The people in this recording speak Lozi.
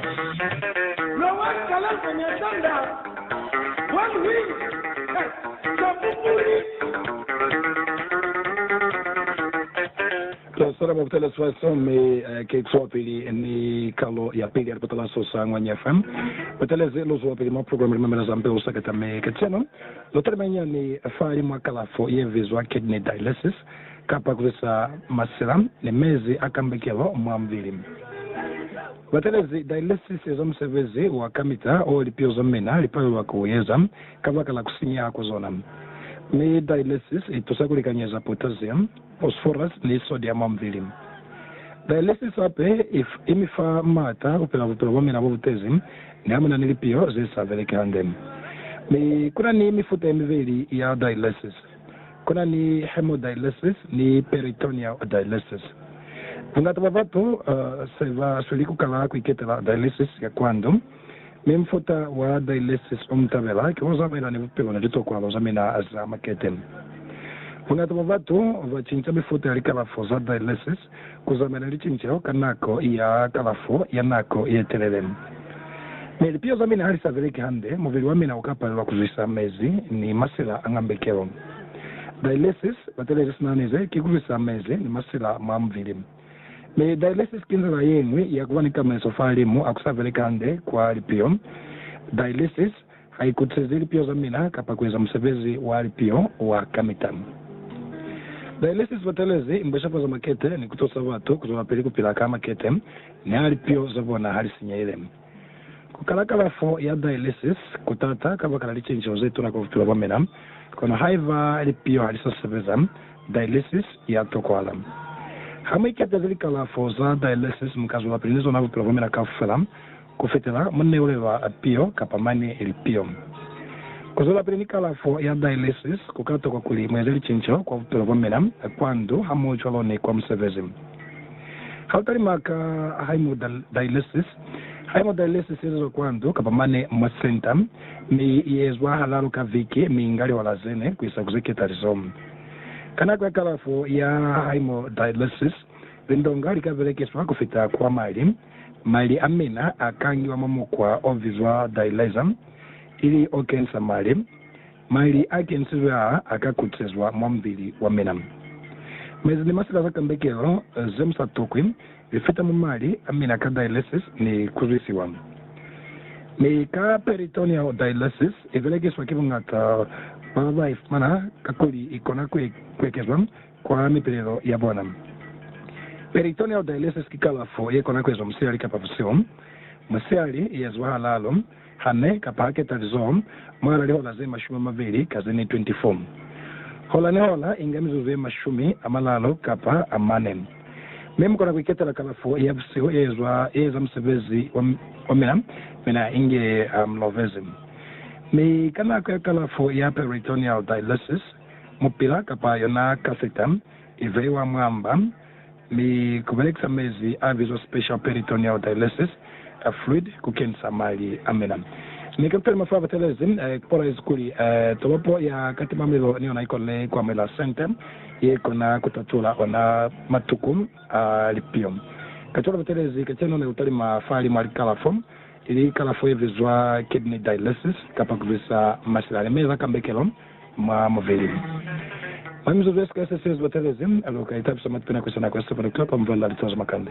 Lwa one kalanka nya sanda one wing eh Kapupuli. Twa sala mwa butala swa so mi eh ki kuwa pili ni kalo ya pili ya lipatala so sa Ngwanya FM. Butelezi lu zuwa pili mwa program Li Mamela za Mpe u Sakata mi kacenu lu talima nyani fa li mwa kalafo ye bizwa kidney dialysis. Kapa kulisa masila ni mezi a kambekelo mwa mubili. Batelezi dialysis eza musebezi wa kamita o lipio za mina li palelwa ku u eza kabaka la ku sinyeha kwa zona. Mi dialysis i tusa ku likanyeza potassium, phosphorus ni sodium mwa mubili. Dialysis hape i mi fa maata ku pila bupilo bwa mina bo bu tezi ni ha mu na ni lipio ze sa beleki hande. Mi ku na ni mifuta ye mibeli ya dialysis. Ku na ni hemodialysis ni peritoneal dialysis. Bungata bwa batu se ba sweli ku kala ku iketela dialysis ya kwa ndu, mi mufuta wa dialysis o mu tabela ki wo zamaelani bupilo ni litokwalo za mina za makete. Bungata bwa batu ba cinca mifuta ya likalafo za dialysis Ku zamela licinceho ka nako ya kalafo ya nako ye telele. Mi lipiho za mina ha li sa beleki hande, mubili wa mina u ka palelwa ku zwisa mezi ni masila a ngambekelo. Dialysis, batelezi sina nize, ki ku zwisa mezi ni masila mwa mubili. Mi dialysis ki nzila ye ñwi ya ku ba ni tamaiso fa limu a ku sa beleki hande kwa lipiho. Dialysis. Ha i kutisezi lipio za mina kapa ku eza musebezi wa lipio wa kamita. Za inesi si batelezi mbashapa za makete ni ku tusa batu ku zwelapili ku pila ka makete niha lipio za bona ha li sinyehile. Ku kala kalafo ya dialysis ku t'ata kabakala licinceho ze tuna kwa bupilo bwa mina, kono haiba lipio ha li sa sebeza, dialysis ya tokohala. Ha mu iketezi likalafo za dialysis, mu ka zwelapili ni zona bupilo bwa mina kaufela. Ku fetela munne ulelwa piyo kapa mane ili piyo. Ku zwelapili ni kalafo ya dialysis ku ka tokwa kuli mueze licinco kwa bupilo bwa mina, kwa ndu hamoho cwalo ni kwa musebezi. Ha u talima ka haemodialysis, haemodialysis yezezwa kwa ndu kapa mane mwa senta, mi i ezwa halalu ka viki mi inga lihola zene kuisa ku zeketalizo. Ka nako ya kalafo ya haemodialysis, lindonga li ka belekiswa ku fita kwa mali. Mali a mina a kangiwa mwa mukwa o bizwa dialyzer, ili o kenisa mali. Mali a kenisizwe aa a ka kutisezwa mwa mubili wa mina. Mezi ni masila za kambekelo ze mu sa tokwi li fita mwa mali a mina ka dialysis ni ku zwisiwa. Mi ka peritoneal dialysis i belekiswa ki buñata bwa ba ba i fumana kakuli i kona ku ekezwa kwa mipilelo ya bona. Peritoneal dialesis ki kalafo ye kona ku ezwa musihali kapa busihu. Musihali i eziwa ha lalo, ha ne, kapa ha keta lizoho, mwahala lihola ze mashumi a mabeli ka ze ne 24. Hola ni hola inga mizuzu ye mashumi a malalo kapa a mane. Mi mu kona ku iketela kalafo ya busihu e ezwa, e eza musebezi wa mina, mina inge ha mu lovezi. Mi ka nako ya kalafo ya peritoneal dialesis, mupila kapa yona kaseta i veiwa mwa mba, mi ku belekisa mezi a bizwa special peritoneal dialysis fluid ku kenisa mali a mina. Mi Captain Mafa batelezi kpolaizi kuli tolopo ya Katimamilo ni yona ikonile ku amuhela sente ye kona ku tatula ona matuku a lipiyo. Kacwalo batelezi kacenu ne ku talima fahalimu a likalafo, ili kalafo ye bizwa kidney dialysis kapa ku bizisa masila a limela kambekelo, mwa mubili. Mwa mizuzu ye si ka sesezi, ba tabezi, alu ka itapisa mwa tipinako, sina kwa sipuni kapa mvula, litazo, makande.